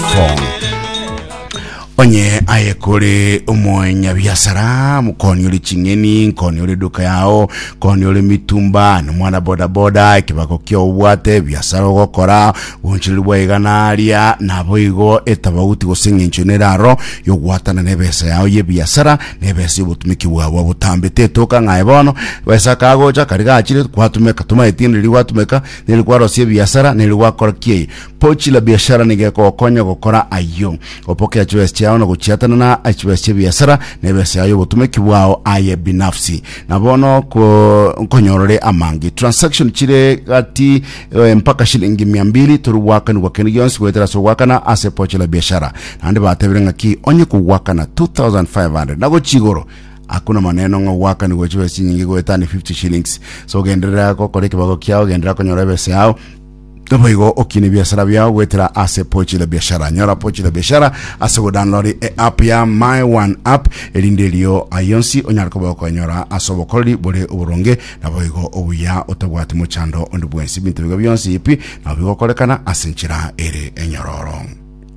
Tom. onye aye kore omonyabiasara mukoni ore ching'eni nkoni ore duka yao koni ore mitumba nomwana bodaboda ekibago kia obwate biasara ogokora bonchiriri bwa igana aria nabo igo etabauti gose eng'encho neraro yogwatana nebesa yao yebiasara nebesa yobotumiki bwao bwa botambe tetoka ng'aye bono besa kagocha kari gachire gwatumeka tomaeti neri gwatumeka neri kwarosia ebiasara neri gwakora kieye Pochi la biashara nigo egokonya gokora ayio. Opokea chibesa chiao na gochiatana na chibesa chi'ebiasara na ebesa yao y'obotumeki bwao aye binafsi. Na bono ko, nkonyorore amange. Transaction chire gati eh, mpaka shilingi mia mbili toru gwakanigwa kende gionsi goetera ase ogwakana ase pochi la biashara. Naende batebire ng'aki onye kogwakana 2500 na gochia igoro hakuna maneno ng'a ogwakanigwe chibesa chinyinge goetani 50 shillings so genderera gokora ekebago kiao genderera konyora ebesa yao Naboigo okine ebiasara biao goetera ase Pochi la Biashara. Nyora Pochi la Biashara ase godownloadi eapp ya My One App, erinde erio ayonsi onyare koba okonyora ase obokoreri bore oboronge naboigo obuya otabwati mochando onde bwensi. Ebinto bigo bionsi pi nabo bigokorekana ase enchera ere enyororo.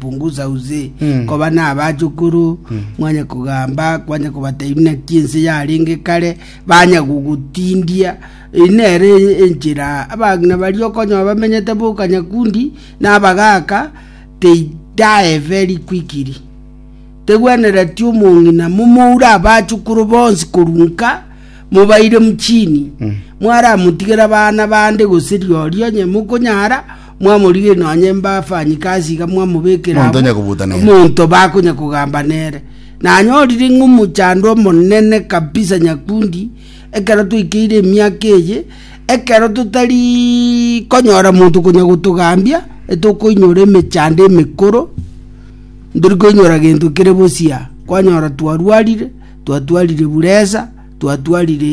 Punguza uze koba nabachukuru, mwanye kogamba, kwanye kobatebi naki ense yarenge kare, banye gogotindia. Eye nere enchera abang'ina baria okonyora bamenyete boka nyakundi na abagaka they die very quickly. Tegwenereti omong'ina momoure abachukuru bonsi korwa nka mobaire mchini mwaramotigera bana bande gose rirorio onye mokonyara Mwamorigia nonye mbafanyikasi iga mwamobekera Monto abwo, onyakobuta nere. omonto bakonya kogamba nere. Nanyorire ng'a omochandwa omonene kabisa nyakundi ekero twaikeire emiaka eye, ekero totari konyora monto konya gotogambia, etokoinyora emechando emekoro, ntori koinyora gento kere bosia. Kwanyora twarwarire, twatwarire buresa, twatwarire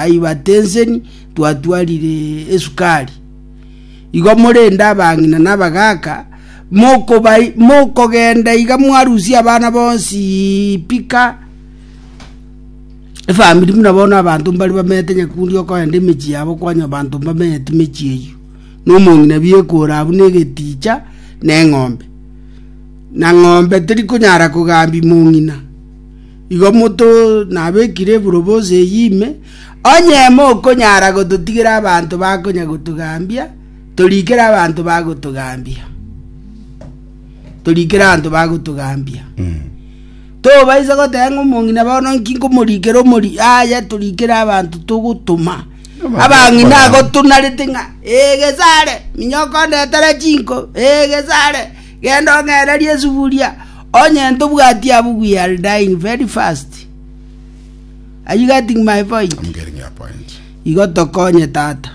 hypertension, twatwarire esukari. Igo morende abang'ina na abagaaka, mokogenda iga mwarusia abana bonsi pika efamiri buna bono abanto mbare bamenyete nyakundi okogenda emechie yabo kwanya abanto mbamenyeti emechie eyio, na omong'ina biekore abwo na egeticha na eng'ombe, na ng'ombe terikonyara kogambia mong'ina. Igo moto nabekire eburobosi eyio ime, onye mokonyara gototigera abanto bakonya gotogambia, torikere abanto bagotogambia. Torikere abanto bagotogambia. Tobaisa goteba ng'a omong'ina bono nki nkomorikera omori aya torikere abanto togotoma. Abanto Abang'ina bakorana. agotunarete ng'a ee gesare, minyoko ndetere chinko, ee gesare. “Genda ong'ererie esuguria, onye ntobwati abwo we are dying very fast. Are you getting my point? Igo tokonye, tata.